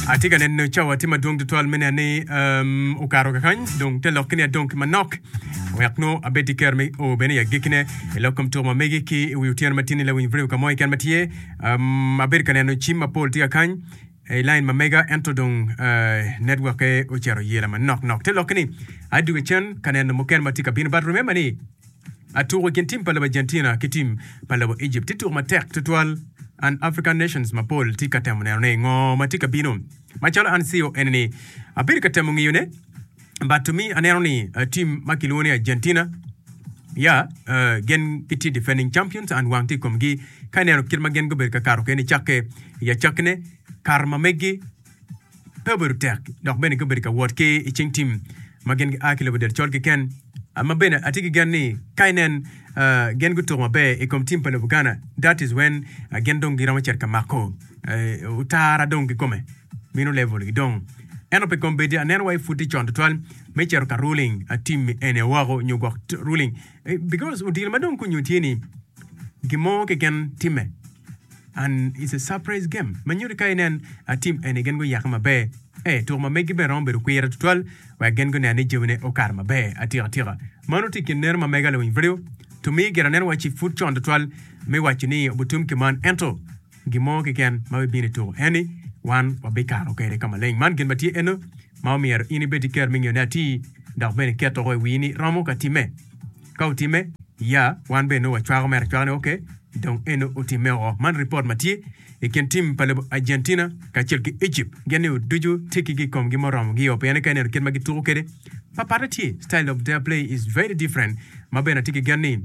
Atye ka neno cawa tye madwong tutwal me nen ni um, okato kakany dong te lokke ni adong ki manok wek nongo abed ki kero me o bene i agikine i lok kom tuko ma megi ki i wi otyeno matini lawiny Vrew ka mo keken ma tye um, abedo ka neno cim mapol tye kakany i lain ma mega ento dong uh, netwokke ocito yela manok nok te lokke ni adwogo cen ka neno mukene ma tye ka bino but remember ni A Tuko i kin tim pa lobo Argentina ki tim pa lobo Egypt tye tuko matek tutwal. An African nations mapol tye ka temo neno ni ngo ma tye ka bino. Macalo an CEO eni ni abedo ka temo ngiyo ne but to me aneno ni tim ma kilwongo ni Argentina ya gen gitye defending champions and wang tye i komgi ka ineno kit ma gen gubedo ka kato kene cakke i acakki ne kato ma megi. Pe obedo tek dok bene gubedo ka wot ki i cing tim ma gin gia ki lobo del col keken. Ma bene atye ki gen ni ka inen gin gutuko maber i kom tim pa lobo Ghana, that is when gin dong giromo cito ka mako otara dong kikome, mino level gi dong. Ento pe kombeddi aneno wai pud tye con tutwal me cito ka ruling tim eni woko nyo gwok ruling Because odilo ma dong kunyo tye ni gin mo keken timme and it's a surprise game ma nyuti ka inen a team eni gin guyake maber. Eh, tuko ma megi bene romo bedo kwira tutwal wek gin gunen ni jamine okato maber atika tika. Mano tye kin neno ma mega lawiny video to miyo giranen wacci pud con tutwal me waco ni obutum ki man ento gin mo keken ma bibino i tuko en ni wan wabikato kwede ka maleng. Man gin ma tye eno ma omyero in ibed ki ker me ngeyone atir dok bene iketo woko i wii ni romo ka timme. Ka otimme, ya wan bene nongo wacwako mere acwaka ni ok, dong eno otimme woko. Man ripot ma tye i kin tim pa lobo Argentina kacel ki Egypt. Gin ni oducu tekki gi ikomgi ma oromo gio pien ni ka ineno kit ma gituko kwede pa patte tye, style of their play is very different ma bene atye ki gen ni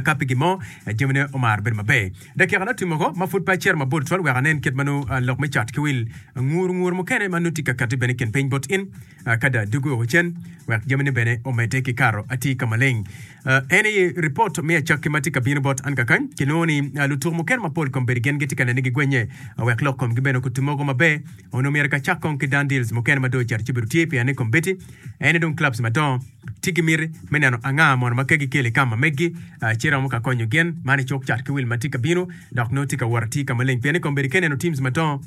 ka pigi mo jamine omaro bedo maber. Dakikane otim woko ma pud pe acito mabor tutwal wek anen kit ma nongo lok me cat ki wil nguru nguru mukene ma nongo tye ka katti bene i kin piny bot in. Ka da dugo woko cen wek jamine bene omedde ki kato, atye ka maleng. Eni ripot me acakki ma tye ka bino bot an kakany. Kilwongo ni lutuk mukene mapol kombeddi gin gitye ka nene gigwennye wek lok komgi bene okutim mogo maber. Onongo myero kacak kong ki Dundills mukene ma dong ocito ci bedo tye pien ni kombeddi ene dong clubs madongo. tye ki miti me neno anga mono ma kegi kelo i kam ma meggi, ci romo ka konyo gin man i cuk cat ki wil ma tye ka bino dok nongo tye ka wot atir ka maleng pien ikombedo ki neno teams madongo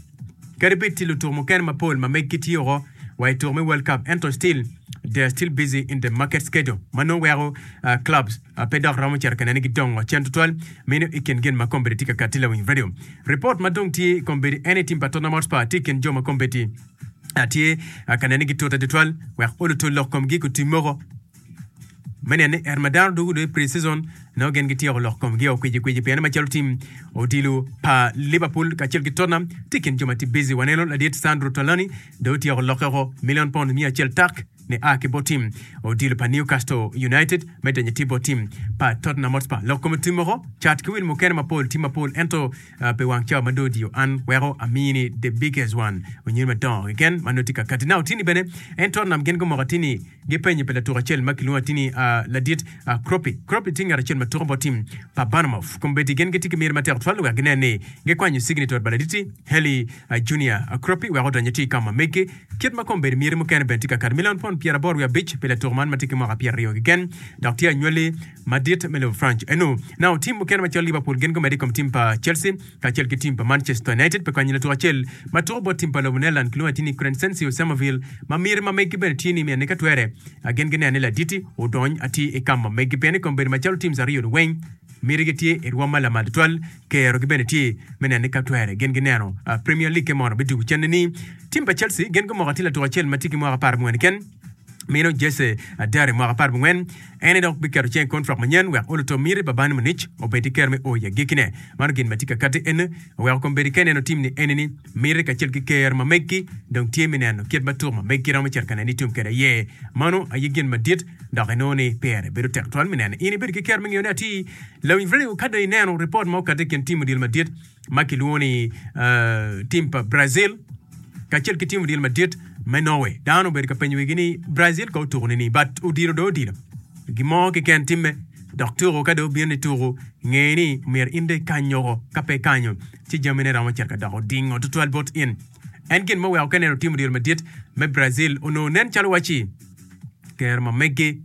kadi bed tye lutuko mukene mapol ma meggi tye oko wa i tuko me world cup ento still they are still busy in the market schedule ma nongo weko clubs pe dok romo cito ka nene gi dongo cen tutwal meno i kin gin ma kombedo tye ka kati lawiny radio report ma dong tye i kombedo en i team pa Tottenham Hotspur tye i kin jo ma kombedo atye ka nene gi tota tutwal wek olo tol lok komgi ku tim moko me nene er ma dano dugu dwe pre season no gen gityeko lok komgi o kwiji kwiji piene macalo tim odilo pa Liverpool kacel ki Tottenham tye kin jo ma tye busy waneno ladit Sandro Tolani do otyeko lokke oko million pound miya acel tak Nia ki bot tim odilo pa Newcastle United me denyo tye bot tim pa Tottenham Hotspur. Lok kome tim moko cat ki wil mukene mapol tim mapol ento pi wang cawa ma dong odiyo an weko amiyi ni the biggest one onyodi madongo keken ma nongo tye ka kati. Now atini bene en Tottenham gin gumoko atini gipenyo pi latuk acel ma kilwongo atini ladit Kropi. Kropi tye ngat acel ma tuko bot tim pa Bournemouth kombeddi gin gitye ki myero matek twal wek ginen ni gikwanyo cigni to pa laditi Haley Junior Kropi wek odonyo ati i kama meggi. Kit ma kombeddi myeri mukene bene tye ka kato milion pond pyeraboro wiye abic pi latuk man ma tye ki mwaka pyeraryo keken, dok tye anywali madit me lobo Franc. Eno, nao tim mukene macalo Liverpool gin gumedde i kom tim pa Chelsea kacel ki tim pa Manchester United pi konyo latuk acel ma tuko bot tim pa lobo Netherlands kilwongo atir ni Crencencio Samavill ma myeri ma megi bene tye ni mine ni ka twere gin gineno ni laditi odony atir i kama megi pien ni kombeddi macalo teams aryo-ni weng myeri gitye i rwom ma lamal tutwal Kero gi bene tye me nene ka twere gin gi neno Premier League-ke mono bitugo cente ni. Tim pa Chelsea gin gumoko atir latuk acel ma tye ki mwaka apar abongwen keken, meno Jesse Darry mwaka apar abongwen. En aye dok biketo cing i kontrak manyen wek oluto miti pa Bayern Munich obed ki kero me o i agikki-ne. Mano gin ma tye ka katti eni, weko kombeddi ka ineno tim ni eni-ni. Miti kacel ki ker ma megi dong tye me neno kit ma tuk ma megi romo cito ka neni itum kwede aye. Mano aye gin madit dok inongo ni pire bedo tek twal me neno in ibedo ki ker me ngeyo ni atir. Lawinybreu ka dong ineno ripot ma okato i kin tim odilo madit ma kilwongo ni tim pa Brazil kacel ki tim odilo madit me Norway, dano obedo ka penyo wigi ni Brazil ka otuko nini but odilo dong odilo gin mo keken timme dok tuko ka dong obino ni tuko ngeye ni myero in dong ikany oko ka pe ikanyo. ci jamine romo cito ka doko odingo tutwal bot in. En gin ma oweko Kenner otimo diro madit me Brazil onongo nen calo waci kero ma meggi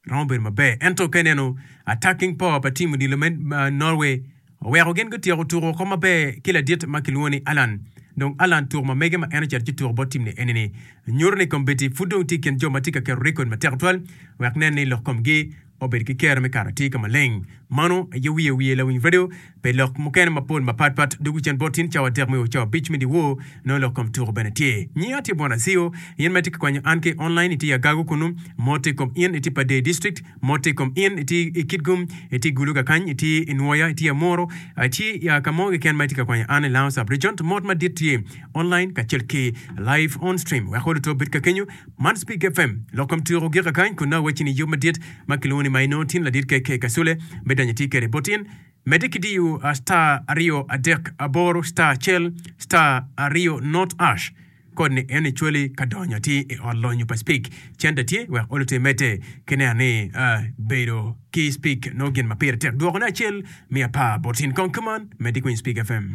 romo bedo maber, ento ka ineno attacking power pa team odilo me Norway oweko gin gutyeko tuko woko maber ki ladit ma kilwongo ni Allan. Dong Allan tuko ma megge ma en ocito ci tuko bot team ni eni-ni nyuto ni kombeddi pud dong tye i kin jo ma tye ka keto record matek twal wek nen ni lok komgi Obedo ki kero me kato atir ka maleng. Mano aye wiye wiye lawiny radio pi lok mukene mapol mapat pat dogwi cen bot in cawa adek me o cawa abic me dyewor. Nongo lok kom tuko bene tye. Nyinga atye Bwana Aziyo. In ma itye ka kwanyo an ki online itye i Agago kunu. Mot i kom in itye Padee District. Mot i kom in itye i Kitgum, itye i Guluga kany, itye i Nwoya, itye i Amuru, ci ya ka mo keken ma itye ka kwanyo an i Lango Sub-Region. Mot madit tye online kacel ki live on stream. Weko luto obed ka kenyo. Man Spik FM, lok kom tuko gika kany kun nongo wacci ni yub madit ma kilwongo ni Maino tin ladit kek i Kasule me donyo itye kede bot in. Medde ki diyo star aryo adek aboro star cell star aryo not ash kod ni eno icwali ka donyo atir i ot lonyo pa Spik centa tye wek olu te medde ki neno ni bedo ki Spik nongo gin ma pire tek dwokone acel me apar bot in kong kuman medde kwiny Spik FM.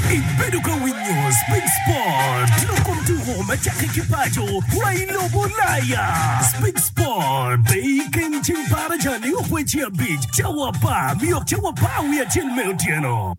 Ibedo ka winyo Speed Sport, lok kom tuko ma cakke ki paco wa i lobo Ulaya. Speed Sport pe i kin ceng par aca ni okweci abic cawa apar mi yok cawa apar wiye acel me otyeno.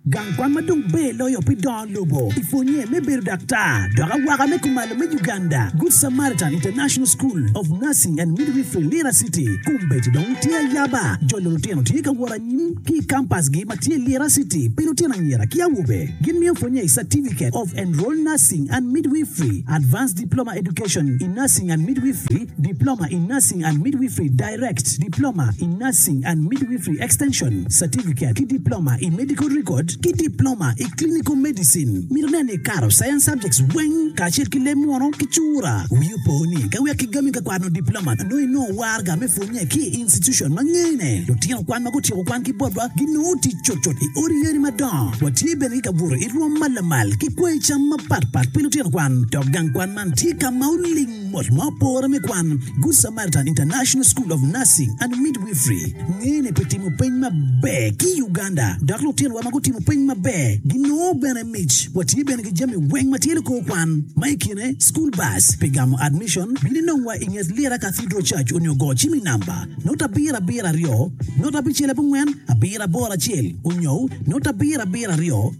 Gang kwan ma dong ber loyo pi dongo lobo i pwonnye me bedo daktar dok awaka me kumalo me Uganda, Good Samaritan International School of Nursing and Midwifery, Lira City, Kumbeti dong tye ayaba. Jolo lutino tye ka wot anyim ki i kampasgi ma tye Lira City pi lutino anyira ki awobe. Gimiyo pwonnye i Certificate of Enrolled Nursing and Midwifery, Advanced Diploma Education in Nursing and Midwifery, Diploma in Nursing and Midwifery, Direct, Diploma in Nursing and Midwifery Extension, Certificate ki Diploma i Medical Record, ki Diploma i Clinical Medicine. Mito nen ni ikato Science Subjects weng kacel ki leb munu ki cura. Wii opo ni ka wek kigami ka kwano Diploma nongo inongo warga me pwonye ki i institution ma ngene. Lutino kwan ma gutyeko kwan ki botwa ginongo tic cutcut i odi yadi madongo. Watye bene ki kabuto i rwom ma lamal ki kwanyi cam mapatpat pi lutino kwan, dok gang kwan man tye ka ma oling. Mot ma opore me kwan, Good Samaritan International School of Nursing and Midwifery ngene pi timo peny maber ki i Uganda, dok lutinowa ma gutimo peny maber ginongo bene mic. Watye bene ki jami weng ma tye likor kwan, ma i kine school bus. Pi gamo admission, bin inongwa i nget Lira Cathedral Church onyo go cim i namba note abiro abiro aryo note abicel abongwen abiro aboro acel onyo note abiro abiro aryo.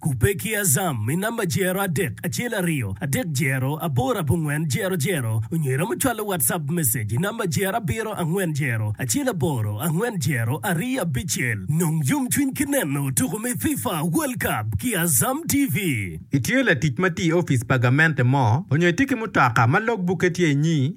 Kubbe ki Azam i namba jero adek acel aryo adek jero aboro abongwen jero jero onyo iromo cwalo WhatsApp message i namba jero abiro angwen jero acel aboro angwen jero aryo abicel. Nong yomcwiny ki neno tuko me FIFA World Cup ki Azam TV. Itye latic ma tye i opic pa gamente mo, onyo itye ki mutoka ma logbukke tye inyi?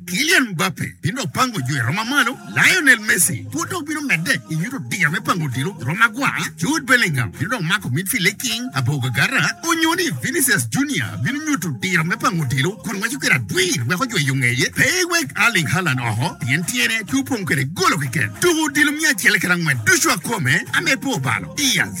Kylian Mbappe bino dok pango jwiro ma malo, Lionel Messi pud dok bino medde i nyuto diya me pango odilo jwiro magwar, Jude Bellingham bino dok mako midfield i king abogagara, onyo ni Vinicius Junior bino nyuto diro me pango odilo kun waco kwede adwir wek ojweyo ngeye pe ewek Erling Haaland oko pien tyene pe opong kwede golo keken. Tuko odilo miya acel kede angwen ducu akome, ame pe obalo. Diaz.